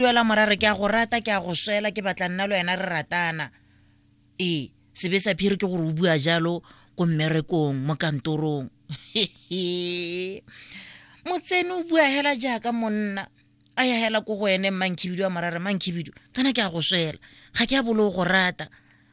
duela morare ke a go rata ke a go swela ke batla nna le wena re ratana ee sebe sa phiri ke gore o bua jalo ko mmerekong mo kantorong motsene o bua hela jaaka monna a ya hela ko go ene mmankhibidu wa morare mankhibidu kana ke a go swela ga ke a bolo go rata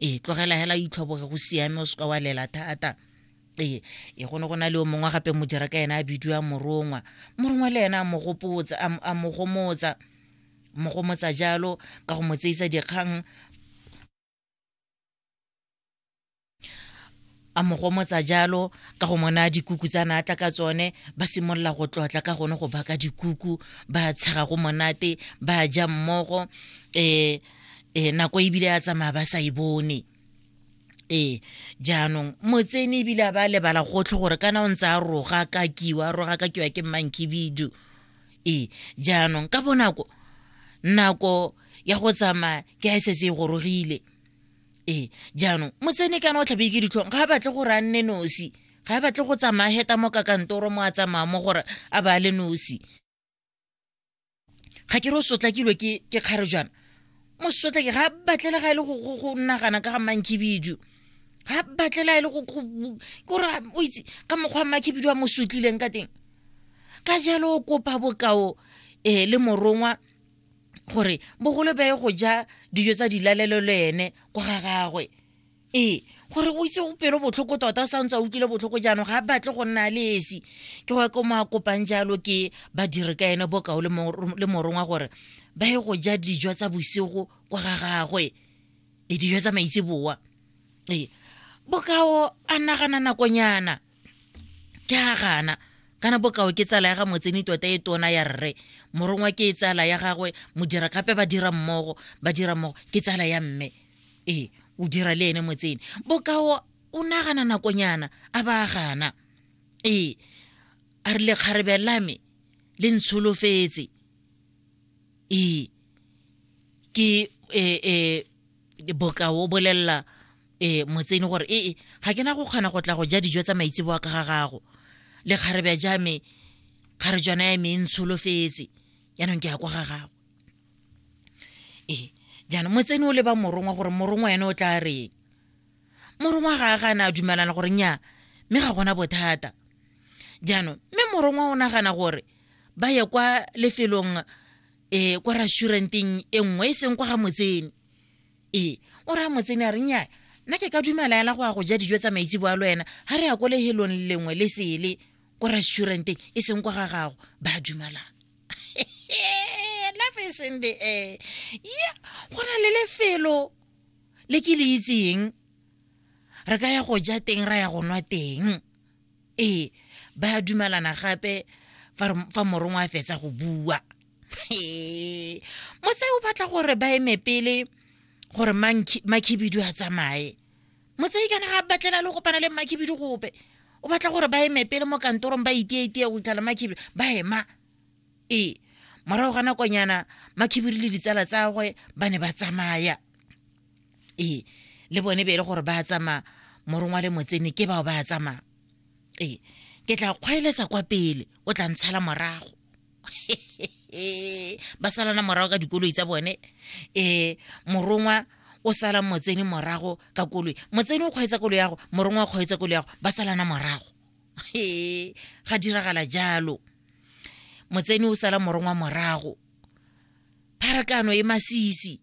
ee tlogela hela itlhoboge go siame o seka wa lela thata ee e go ne go na le o mongwe gape modira ka ena a bidiwa morongwa morongwa le ena a mo gopotsa a mo gomotsa mo gomotsa jalo ka go mo tseisa dikgang a mo gomotsa jalo ka go mona dikuku tsa naatla ka tsone ba simolola go tlotla ka gone go baka dikuku ba tshega go monate ba ja mmogo um um nako ebile ya tsamaya ba sa e bone ee jaanong motsene ebile a ba lebala gotlhe gore kana o ntse a roga ka kiwa roga ka kiwa ke mmankibidu ee jaanong ka bonako nako ya go tsamaya ke a e setse e gorogile ee jaanong motsene kana o tlhabe ke ditlhong ga a batle gore a nne nosi ga a batle go tsamaya heta mo ka kantoro mo a tsamaya mo gore a ba le nosi ga ke re o sotlakilwe ke kgare jaana mo sotlake ga a batlela ga e le go nagana ka ga mankibidu ga a batlela e le go kore o itse ka mokgwa wa makibidu a mo sotlileng ka teng ka jalo o kopa bokao um le morongwa gore bogolo beye go ja dijo tsa dilalelo le ene kwa ga gagwe ee gore o itse o pelo botlhoko tota o sa ntse a utlwile botlhoko jaanong ga a batle go nna le esi ke wa ko mo a kopang jalo ke badiri ka ene bokao le morongwa gore ba ye go ja dijo tsa bosigo kwa ga gagwe e dijo tsa maitseboa ee bokao a nagana nakonyana ke ga gana kana bokao ke tsala ya ga motseni tota e tona ya rre morongwa ke e tsala ya gagwe modira gape ba dira mmogo ba dira mmogo ke tsala ya mme ee o dira le ene motseni bokao o nagana nakonyana a ba gana ee a re lekgarebe la me le ntsholofetse ee ke um bokao o bolelela um motseni gore ee ga ke na go kgona go tla go ja dijo tsa maitseboa ka ga gago le kgarebja jame kgarejwana ya me e ntsholofetse yaanong ke ya kwa ga gago ee jaanong motseni o leba morongwa gore morongwa ene o tla reng morongwa ga a ga ne a dumelana gore nya mme ga gona bothata jaanong mme morongwa o nagana gore ba ye kwa lefelong e kwa restauranteng e nngwe e seng kwa ga motsene ee o raya motsene a re nnyaya nna ke ka dumela ela go ya go ja dijo tsa maitse bo a lo ena ga re ya ko lehelong lengwe le sele ko restauranteng e seng kwa ga gago ba dumelang life is in the air yeah go na le lefelo le ke le itseng re ka ya go ja teng ra ya go nwa teng ee ba a dumalana gape fa re- fa morongwa a fetsa go bua Ee, motse o batla gore ba eme pele gore Manki- makhibidu a tsamaye motse kana ga batlela le kopana le makhibidu gope o batla gore ba eme pele mo kantorong ba itietie go itlhala makhibidu ba ema ee morago ga nakonyana makhibidu le ditsala tsagwe ba ne ba tsamaya ee le bone be e le gore ba tsamaya morongwa le motsene ke bao ba tsamaya ee ke tla kgwaeletsa kwa pele o tla ntshala morago ba salana morago ka dikoloi tsa bone um morongwa o sala motsene morago ka koloi motsene o kgweetsa koloi yago morongwa o kgweetsa koloi yago ba salana morago e ga diragala jalo motsene o sala morongwa morago pharakano e masisi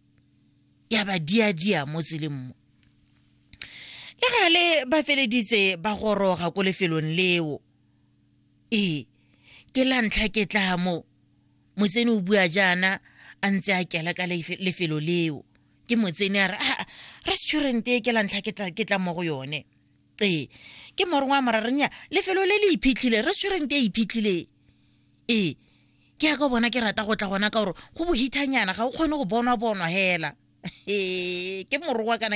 ya ba diadia mo tseleng mo le gale ba feleditse ba goroga ko lefelong leo ee ke la ntlha ke tla mo motsene o bua jaana a ntse a kela ka lefelo leo ke motsene a re a ah, restaurant e ke la ntlha ke tla mo go yone ee ke morongwe a morarenya lefelo le le iphitlhile restaurant e iphitlhileng ee ke ya ka bona ke rata go tla gona ka gore go bohithanyana ga o kgone go bonwa bonwa hela ee ke morowa kana